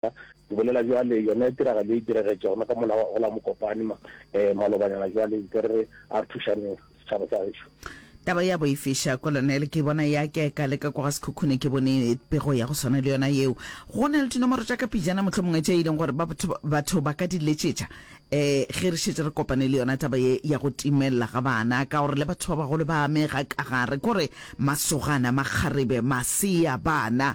Ke bolela jwale, yona tiragalo e diregetša gona ka mola wa gola Mokopane ma, eh, malobanyana jwale, nke re a re thušaneng setšhaba sa gešo. Taba ya boifiša, Kolonel, ke bona ya ke ka leka kwa ga Sekhukhune ke bone pego ya go swana le yona yeo. Go na le dinomoro tša ka pijana mohlomongwe tše e leng gore ba batho, batho ba ka di letšetša, eh, ge re šetše re kopane le yona taba ye ya go timelela ga bana, ka gore le batho ba bagolo ba amega ka gare, kore masogana, makgarebe, masea, bana,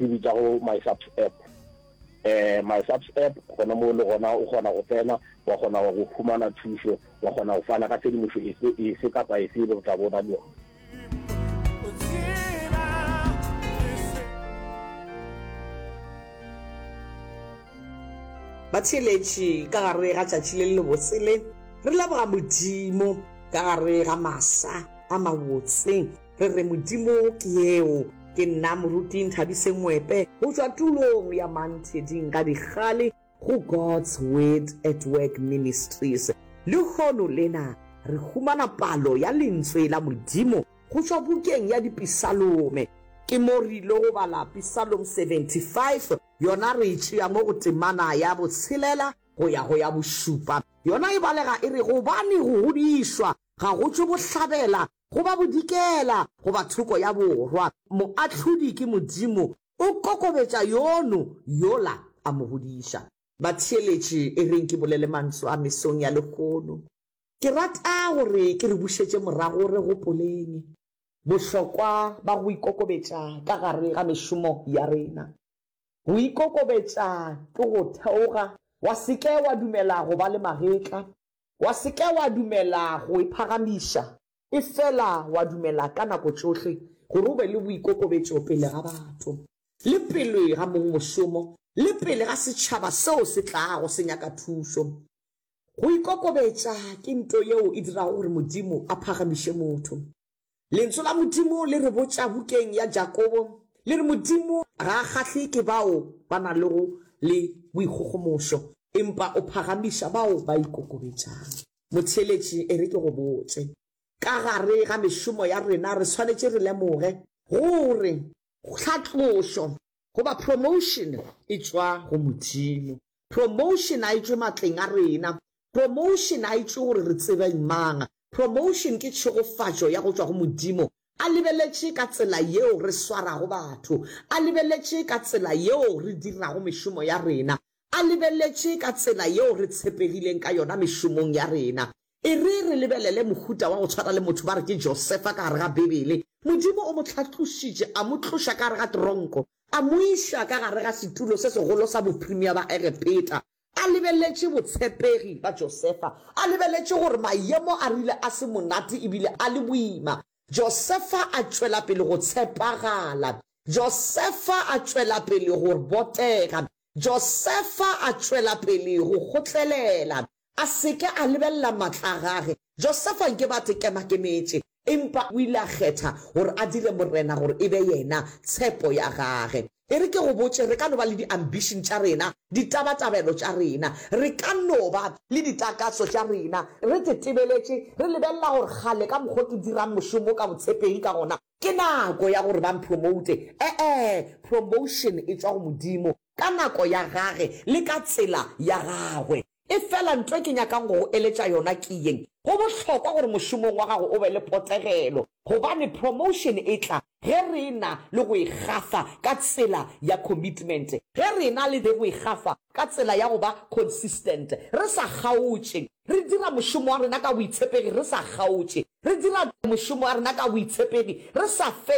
e bitsa go my subs app eh my subs app gona mo le gona o kgona go tsena wa kgona go fumana thušo wa kgona go fana ka tshedimošo efe efe kapa efe e le go tla bona le yona batheeletši ka gare ga tšatši le lebotsele re leboga modimo ka gare ga masa a mabotse Re re Modimo ke yeo. Ke nna Moruti Nthabise Ngwepe go tšwa tulong ya Mantheding ka dikgale go God's Word at Work Ministries. Lehono lena re humana palo ya Lentswe la Modimo go tšwa bukeng ya Dipisalome. Ke mo re ilo go bala Pisalome 75, yona re e tšea mo go temana ya botshelela go ya go ya bošupa. Yona e balega e re, Gobane go godišwa ga go tšwe bohlabela goba bodikela goba thoko ya borwa, Moahlodi ke Modimo, o kokobetša yono yola a mo godiša. Batheeletši, e reng ke bolele mantšu a mesong ya lehono, ke rata gore ke re bušetše morago re gopoleng bohlokwa ba go ikokobetša ka gare ga mešomo ya rena. Go ikokobetša ke go theoga, wa se ke wa dumela go ba le magetla, Wa se ke wa dumela go e phagamiša, efela wa dumela ka nako tšohle gore o be le boikokobetšo pele ga batho, le pele ga mong mošomo, le pele ga setšhaba seo se tlago se nyaka thušo. Go ikokobetša ke nto yeo e dirago gore Modimo a phagamiše motho. Lentso la Modimo le re botša bukeng ya Jakobo, le re Modimo ga a kgahlwe ke bao ba na lego le boikgogomošo, empa o phagamiša bao ba ikokobetšang. Motheeletši, e re ke go botše, ka gare ga mešomo ya rena re swanetše re lemoge gore tlhatlošo, goba promotion, e tšwa go Modimo. Promotion a e tšwe matleng a rena. Promotion a e tšwe gore re tsebeng mang. Promotion ke tšhegofatšo ya go tšwa go Modimo. A lebeletše ka tsela yeo re swarago batho. A lebeletše ka tsela yeo re dirago mešomo ya rena. A lebeletše ka tsela yeo re tshepegileng ka yona mešomong ya rena. E re re lebelele mohuta wa go tshwana le motho ba re ke Josefa ka gare ga Beibele. Modimo o mo hlatlošitše, a mo tloša ka gare ga teronko, a mo iša ka gare ga setulo se segolo sa boprimea ba Egepeta. A lebeletše botshepegi bja Josefa, a lebeletše gore mayemo a rile a se monate e bile a le boima. Josefa a tšwela pele go tshepagala. Josefa a tšwela pele go botega. Josefa a tšwela pele go kgotlelela. a se ke a lebelela matla a gage. Josefa nke ba te kemakemetše, empa o ile a kgetha gore a dire Morena gore e be yena tshepo ya gage. E re ke go botše, re ka no ba le di-ambition tša rena, ditabatabelo tša rena. Re ka no ba le ditakatso tša rena, re tetebeletše, re lebelela gore kgale ka mokgwa o ke dirang mošomo ka botshepegi ka gona, Ke nako ya gore ba mpromoute. E-e, promotion e tšwa go Modimo, ka nako ya Gage le ka tsela ya Gagwe. Efela nto e ke nyakang go go eletša yona ke yeng, go bohlokwa gore mošomong wa gago o be le potegelo, gobane promotion e tla ge re e-na le go e gafa ka tsela ya commitment, ge re e-na le go e gafa ka tsela ya go ba consistent, re sa kgaotše. Re dira mošomo wa rena ka boitshepegi re sa kgaotše. Re dira mošomo wa rena ka boitshepegi re sa fele.